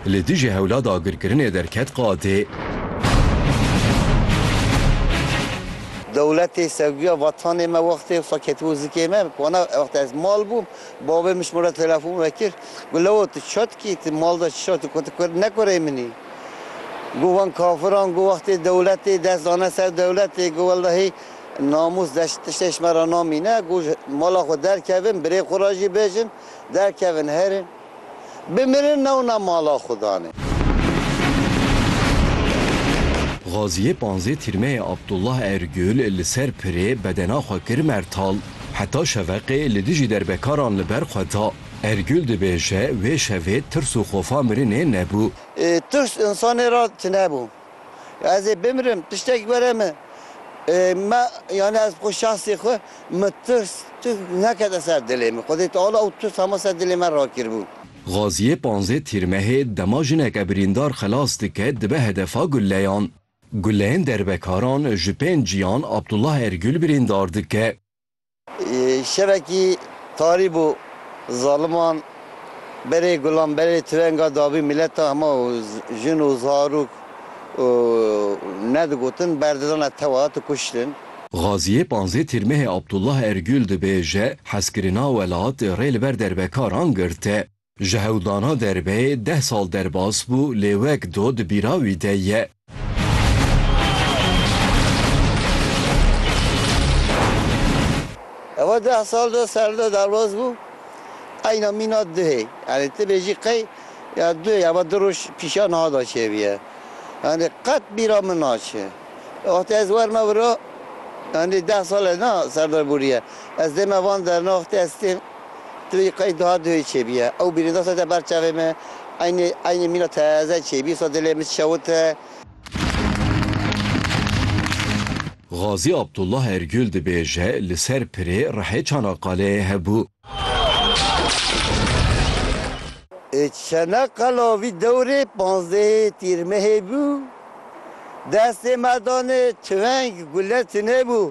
Li dijî hewla dagirkirinê derket qadê. Dewletê sevgiya vatanê me wextê wisa ket bo zikê me, wana wextê ez mal bûm bavê min ji min re telefon vekir, got Lewo tu çi dikî, tu mal de çi dikî, got tu ne kurê min î. Got van kafiran got wextê dewletê dest dane ser dewletê, got wellehî namûs deşt tiştê ji me re namîne, got ji mala xwe derkevin birê xwe re jî bêjin derkevin herin. Bimirin newna mala xwe danê. Gaziyê panzê tîrmeyê Abdullah Ergül li ser pirê bedena xwe kir mertal. Heta şeveqê li dijî derbekaran li ber xwe da. Ergül dibêje wê şevê tirs û xofa mirinê nebû. Tirs însanê re tunebû. Ez ê bimrim, tiştek were min. Me, yanî ez bi xwe şahsê xwe, min tirs tu nekete ser dilê min. Xwedê Teala ew tirs hema ser dilê me rakiribû. Gaziyê panzdeh Tîrmehê dema jineke birîndar xilas dike dibe hedefa guleyan. Guleyên derbekaran ji pênc ciyan Abdullah Ergül birîndar dike. Şevekî tarî bû zaliman berê gulan berê tirenga dabî mileta hema û jin û zarok û ne digotin berdidane tewa tu kuştin. Xaziyê panzê Tîrmehê Abdullah Ergül dibêje, Hezkirina welat rê li ber derbekaran girte. Ji hewldana derbeyê deh sal derbas bû lê wek do di bîra wî de ye. Ew deh sal de serde derbas bû eyna mîna duhê. Yanî tu bêjî qey ya duhê ya du roj pîşa niha de çêbûye. Yanî qet bîra min naçe. Wextê ez werna vira yanî deh sal e na serde bûriye. Ez dême van der na wextê ez têm. Ti vê qey duha duhê çêbîye. Ew bîrîndasa te ber çavê me. Eynê eynê mîna teze çêbî so dilê min şewite. Gazî Abdullah Ergül dibêje, Li ser pirê rehê Çanaqqaleyê hebû. Ê Çanaqqala vî dewrê panzdehê Tîrmehê bû. Destê me danê tüfeng, gule tunebû.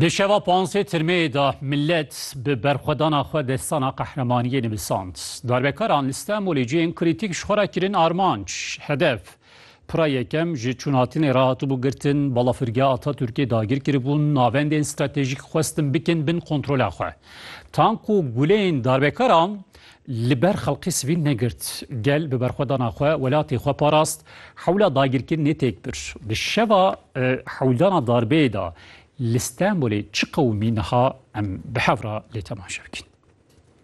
Di şeva pansê tirmeyê de millet bi berxwedana xwe destana qehremaniyê nivisand. Darbekaran li Stenbolê cihên krîtîk ji xwe re kirin armanc, hedef. Pira yekem ji çûnatinê re hatibû girtin, balafirgeha Atatürkê dagir kiribûn, navendên stratejîk xwestin bikin bin kontrola xwe. Tank û guleyên darbekaran Li ber xelkê sivîl negirt. Gel bi berxwedana xwe welatê xwe parast. Hewla dagirkirinê têk bir. Di şeva hewldana darbeyê de li Stenbolê çi qewimî niha em bi hev re lê temaşe bikin.